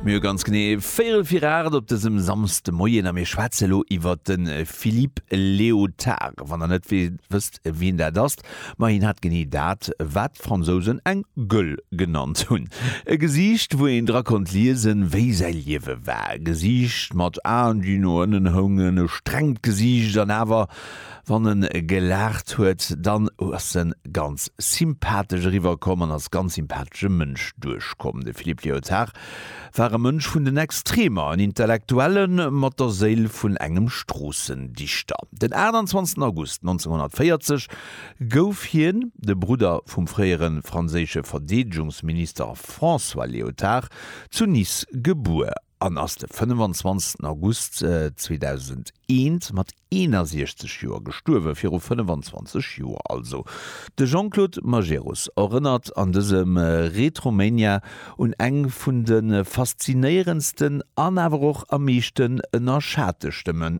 Mir hu ganz genee véierel vir 8 op dësem Samsdemoien a mir schwätze lo iwwert de Philippe Léotard. Wann der net wësst wien dat ass, ma hien hat genee dat wat d'Fransousen eng Gëll genannt hunn. E Gesiicht wou een dra konnt liesen wéi säi Liewe war. E Gesiicht mat Aen déi no ënnen houngen, e strengt Gesiicht an awer, Wann en gelaacht huet, dann ass en ganz sympathesch eriwwer komm an als ganz sympathesche Mënsch duerch komm. De Philippe Léotard war e Mënsch vun den Extremer, en Intellektuelle mat der Séil vun engem Stroossendichter. Den 28 August 1940 gouf hien, de Brudder vum fréiere franséische Verdeedegungsminister François Léotard, zu Nice gebuer. an ass de 25 August 2001 mat 61 Joer gestuerwen, viru 25 Joer also. De Jean-Claude Majerus erënnert an dësem Retromania un eng vun de faszinéierendsten an awer och am meeschten ënnerschate Stëmme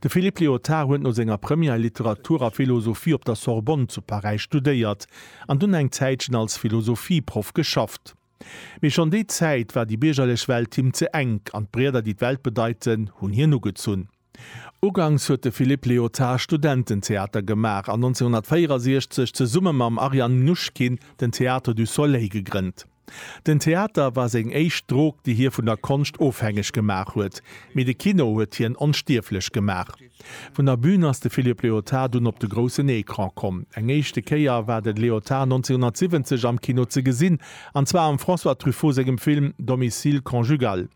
De Philippe Léotard huet no senger Première Literatur a Philosophie op der Sorbonne zu Paräis studéiert an dunn eng Zäitchen als Philosophieproff geschafft. Mee schonn déi Zäit war déi biergerlech Welt him ze enk an d'Brieder, déi d'Welt bedeiten, hunn hien ugezunn. Uganks huet de Philippe Léotard Studententheater gemaach an 1964 zesumme mam Ariane Mnouchkine den Théâtre du Soleil gegrënnt. Den Theater war seng éischt Drog, déi hie vun der Konscht ofhängeg gemaach huet, mee de Kino huet hien onstierflech gemaach. Vun der Bün ass de Philippe Léotard dunn op de groussen Ecran komm. Eng éischte Kéier war de Léotard 1970 am Kino ze gesinn, an zwar am François Truffaut sengem Film Domicile conjugal.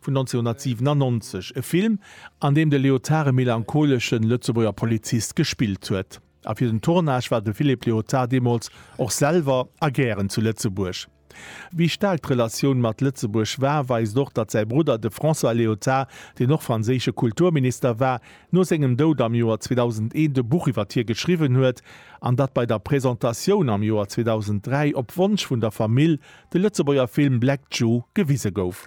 vun 1997, e Film, an deem de Léotard e melancholeschen Lëtzebuerger Polizist gespillt huet. A fir den Tournage war de Philippe Léotard deemools och selwer a gären zu Lëtzebuerg. Wéi staark d'Relatioun mat Lëtzebuerg war, weist och, datt säi Brudder, de François Léotard, deen och franséische Kulturminister war, no sengem Doud am Joer 2001 e Buch iwwert hie geschriwwen huet, an datt bei der Presentatioun am Joer 2003 op Wonsch vun der Famill de Lëtzebuerger Film Black Jew gewise gouf.